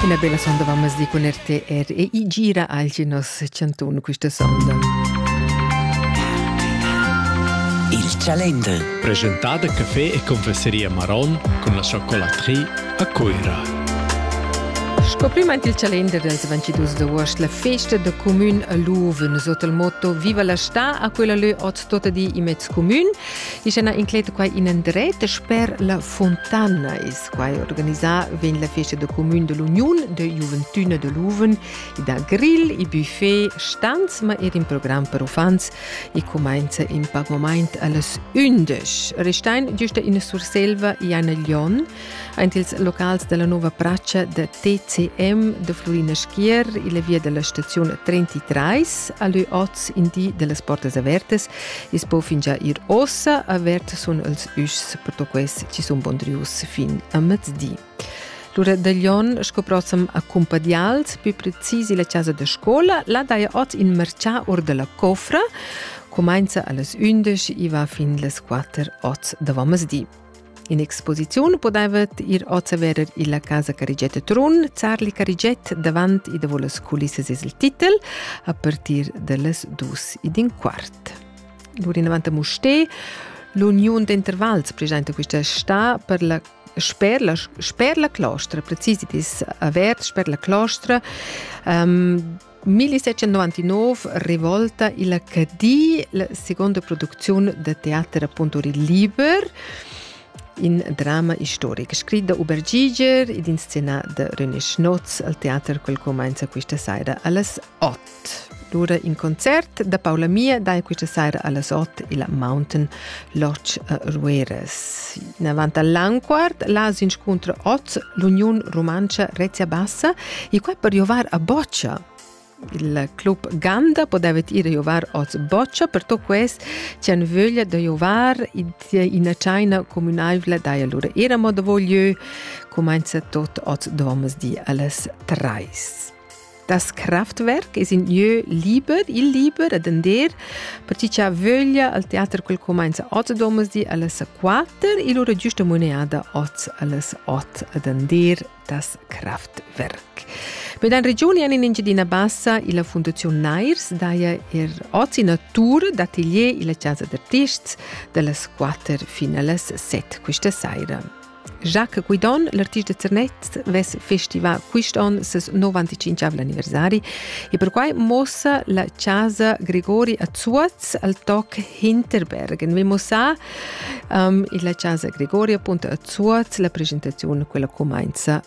Ina bella sonda va mezdi cun RTR e i gira agl nos cantun questa sonda. Il Calendar. Presentada caffè e confesseria Maron cun la chocolaterie a Cuira. Sco prima il calender dels 22 d'agost, la festa de comun a Loven, sot il motto Viva la sta a quella lö oz tota di imez comun, is ena incleta quai in andret per la Fontana is Squai organisà vegn la festa da cumün da l'Uniun da Juventüna da Luven ed ha grill e buffet stans ma er in program per uffants e cumainza in pac momaint a las ündesch. Restein giusta in Surselva e Anna Lion aint ils locals della nuova praccia da TCM da Florina Schier e la via della stazione 33 a lü oz in di dellas portas avertas I's po fingià ir ossa avert sun els üschs pertoquests chi sun pondrius fin a mezdi. Lura da Lyon sco prossam a Cumpadials, più precis illa casa da scola, là daja ot in marchà or da la cofra, comincia a las 11 e va fin las 4 oz da di. In exposiziun podaivet ir ozeverer illa casa Carigiet Trun, Zarli Carigiet davant ed davò las culissas es il titel, a partir da las dus ed in quart. L'urinavant a Mustè, l'uniun d'intervals presenta quista sta per la sper la, sper la clostra, precis dit es avert sper la clostra, um, 1799 revolta il Cadi, la seconda produzione de teater appunto liber in drama historic, scritto da Hubert Giger ed inscenà da René Schnotz al teater quel comincia questa sera alles 8. Allora in concert da Paola Mia dai questa sera alles 8 il Mountain Lodge a Rueras. Davant all'Anquart, las inscuntra oz l'Uniun Rumantscha Rezia Bassa e quai per giovar a boccia. Il club Ganda podeva ir a giovar oz boccia per to quest c'han vöglia da giovar ina chaina communaivla da allora era mo da voglio comenza tot oz domas di alles treis. Das Kraftwerk es in lieu liber, il liber ad andar, per chi cha vöglia al teater quel comainza ot domersdi alles 4, il ora giusta moneada oz alles ot ad andar das Kraftwerk. Med en regionen in Engiadina Bassa e la Fundazione Nairs daja er ozi natur d'atelier e la Casa d'Artists de las quatter fin a las set questa saira. Jacques Guidon, l'artista Zernez, vess festivà quist on ses 95 anniversari e perquai muossa la chasa Gregori a Zuoz al toc Hinterbergen. Vi mussar um, la chasa Gregori appunto a Zuoz la presentaziun, quella cumainza